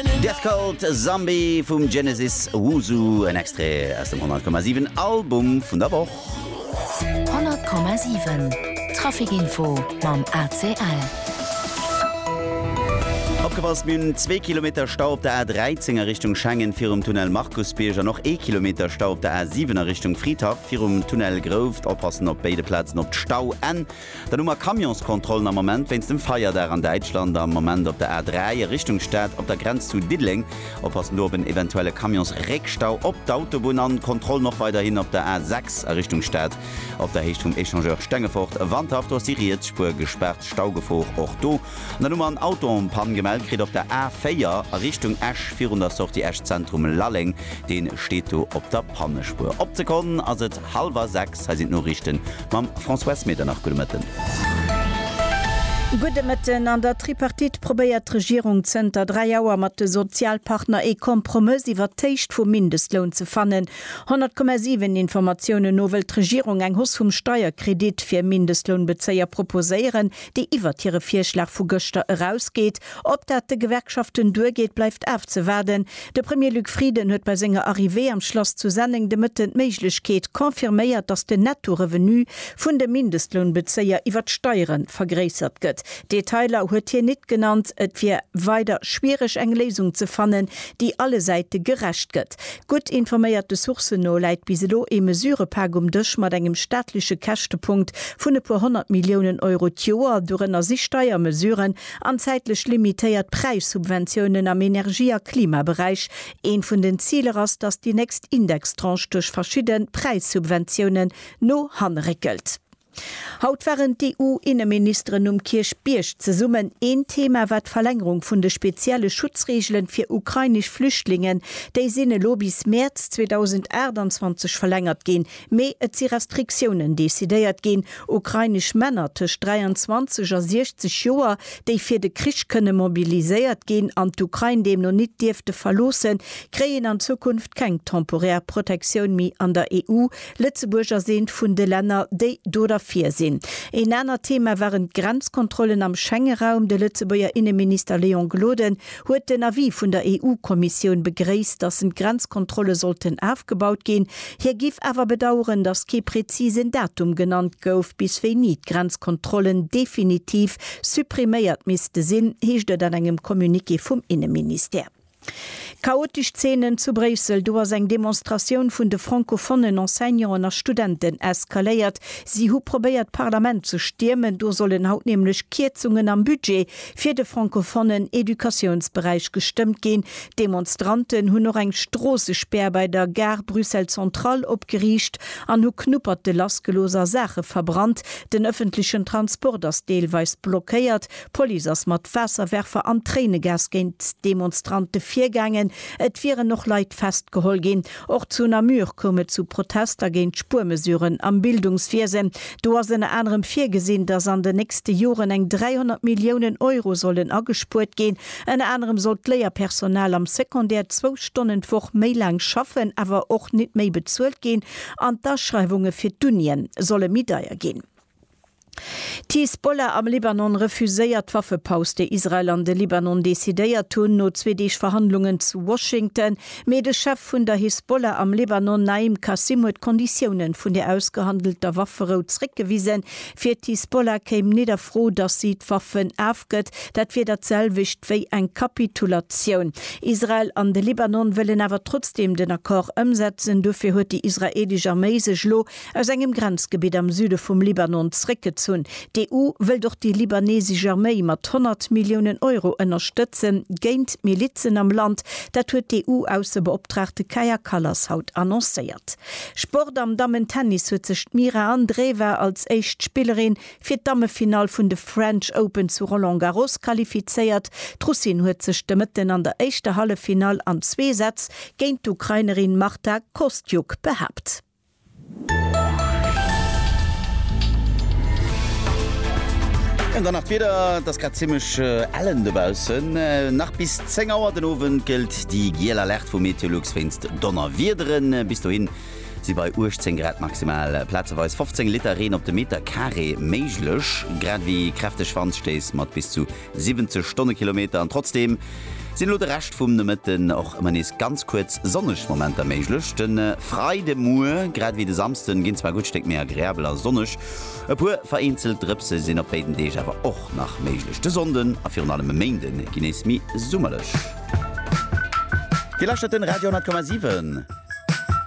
Death Cult, Zombie vum Genesis, Wuzu, en Extrait aus dem 100,7 Album vun der Woch. 100,7 Traficinfo mam ACL. Opgepasst, Mir hunn zwee Kilometer Stau op der A13 a Richtung Schengen virum Tunnel Markusbierg an och ee Kilometer Stau op der A7 a Richtung Fridhaff virum Tunnel Grouft. Oppassen op béide Plazen op d'Stauenn. Dann hu mer Camionskontrollen am Moment wéinst dem Feierdag an Däitschland am Moment op der A 3 a Richtung Stad op der Grenz zu Diddeleng. Oppassen do op en eventuelle Camionsréckstau op d'Autobunn an Kontrollen och weiderhin op der A 6 a Richtung Stad op der Héicht vum Echangeur Stengefort, Wandhaff. Do ass déi riets Spuer gespaart, Staugefor och do. An dann hu mer en Autopann gemellt kritt op der A 4 a Richtung Esch virun der Sortie Esch Zentrum Lalleng. Dee steet do op der Pannespuer. Op d'Sekonn ass et. Halwer 6, hei sinn d'Noriichten mam François Smieternach. Gudde Mëtten. Gudde Mëtten. An der Tripartite probéiert d'Regierung zënter 3 Auer mat de Sozialpartner ee Kompromëss iwwert d'Héicht vum Mindestloun ze fannen. 100,7 Informatiounen no wëllt d'Regierung eng Hoss vum Steierkredit fir Mindestlounbezéier proposéieren. déi iwwert hire Virschlag vu gëschter erausgeet. Ob dat de Gewerkschaften duergeet, bleift afzewaarden. De Premier Luc Frieden huet bei senger Arrivée am Schlass zu Senneng de Mëtten d'Méiglechkeet confirméiert, datt den Netto-Revenu vun de Mindestlounbezéier iwwer d'Steiere vergréissert gëtt. Detailer huet hien nit genannt. Et wier weider schwiereg eng Léisung ze fannen, déi alle Säite gerecht gëtt. Stad. Gutt informéierte Sourcen no läit bis elo ee Mesurëpak um Dësch mat engem staatleche Käschtepunkt vun e puer honnert Milliounen Euro d'Joer, dorënner si Steiermesuren an zäitlech limitéiert Präissubventiounen am Energie a Klimaberäich. Eent vun den Ziler ass, datt déi nächst Indextranche duerch verschidde Präissubventiounen no hanne réckelt. Haut waren d'EU-Inneministeren um Kierchbierg zesummen. Een Thema war d'Verlängerung vun de spezielle Schutzreegelen fir ukrainesch Flüchtlingen. Déi sinn elo bis Mäerz 2028 verlängert ginn. Mee et si Restriktiounen decidéiert ginn. Ukrainesch Männer tëscht 23 a 60 Joer, déi fir de Krich kënne mobiliséiert ginn an d'Ukrain deemno nit dierfte verloossen, kréien an Zukunft keng temporär Protektioun méi an der EU. Lëtzebuerg ass eent vun de Länner, déi do derfir sinn. Een anert Thema waren d'Grenzkontrollen am Schengeraum. De Lëtzebuerger Inneminister Léon Gloden huet den Avis vun der EU-Kommissioun begréisst, datt en d'Grenzkontrolle sollten afgebaut ginn. Hie giff awer bedaueren, datt kee prezisen Datum genannt gouf, bis wéini d'Grenzkontrollen definitiv suppriméiert misste sinn, heescht et an engem Communiqué vum Inneministère. Chaotesch Zeenen zu Bréissel, Do ass eng Demonstratioun vun de francophonen Enseignanten a Studenten eskaléiert. Si hu probéiert d'Parlament ze stiermen, do sollen haut nämlech Kierzungen am Budget fir de francophonen Educatiounsberäich gestëmmt ginn. D'Demonstranten hunn och eng Stroossespär bei der Gare Bruxelles Centrale opgeriicht an hu Knupperte lassgelooss a Saache verbrannt. Den ëffentlechen Transport ass deelweis blockéiert. D'Police ass mat Waasserwerfer an Tréinegas géint d'Demonstrante virgaangen. Et wieren och Leit festgeholl ginn. Och zu Namur koum et zu Protester géint d'Spuermesuren am Bildungswiesen. Do ass ënner anerem virgesinn, datt an den nächste Joren eng 300 Milliounen Euro sollen agespuert ginn. Ënner anerem soll d'Léierpersonal am Secondaire zwou Stonnen d'Woch méi laang schaffen, awer och nit méi bezuelt ginn an d'Aschreiwunge fir d'Unien solle méi deier ginn. D'Hisbollah am Libanon refuséiert d'Waffepaus, déi Israel an de Libanon decidéiert hunn, no zwee Deeg Verhandlungen zu Washington. Mee de Chef vun der Hisbollah am Libanon, Naim Qassem, huet d'Konditiounen vun der ausgehandelter Wafferou zréckgewisen. Fir d'Hisbollah kéim net a Fro, datt si d'Waffen afgëtt. Dat wier dat selwecht wéi eng Kapitulatioun. Israel an de Libanon wëllen awer trotzdeem den Accord ëmsetzen. Dofir huet déi israeelesch Arméi sech elo aus engem Grenzgebitt am Süde vum Libanon zréckgezunn. D'EU wëllt och déi libanesesch Arméi mat 100 Milliounen Euro ënnerstëtzen, géint d'Milizen am Land. Dat huet d'EU-Aussebeoptraagte Kaja Kallas haut annoncéiert. Sport, Am Dammen-Tennis huet sech d'Mira Andreeva als éischt Spillerin fir d'Dammefinall vun de French Open zu Roland Garros qualifizéiert. D'Russin huet sech de Mëtten an der éischter Halleffinall an zwee Sätz géint d'Ukrainerin Marta Kostyuk behaapt. An dann nach d'Wieder, Et ass grad zimmlech ellen dobaussen. Nach bis 10 Auer den Owend gëllt déi giel Alerte vu Meteolux wéinst Donnerwiederen. Bis dohin si bei 18 Grad maximal plazeweis 15 Liter Reen op de Meterkaree méiglech, grad ewéi kräfteg Wandstéiss mat bis zu 70 Stonnekilometer an trotzdeem sinn elo de Rescht vum Nomëtten och ëmmer nees ganz kuerz sonneg Momenter méiglech. De Freide Muer grad ewéi de Samsden ginn zwar gutt Stéck méi agreabel a sonneg, e puer vereenzelt Drëpse sinn op béiden Deeg awer och nach méiglech. De Sonnden a virun allem e Méinde gi nees méi summerlech. Dir lauschtert den Radio 10,7.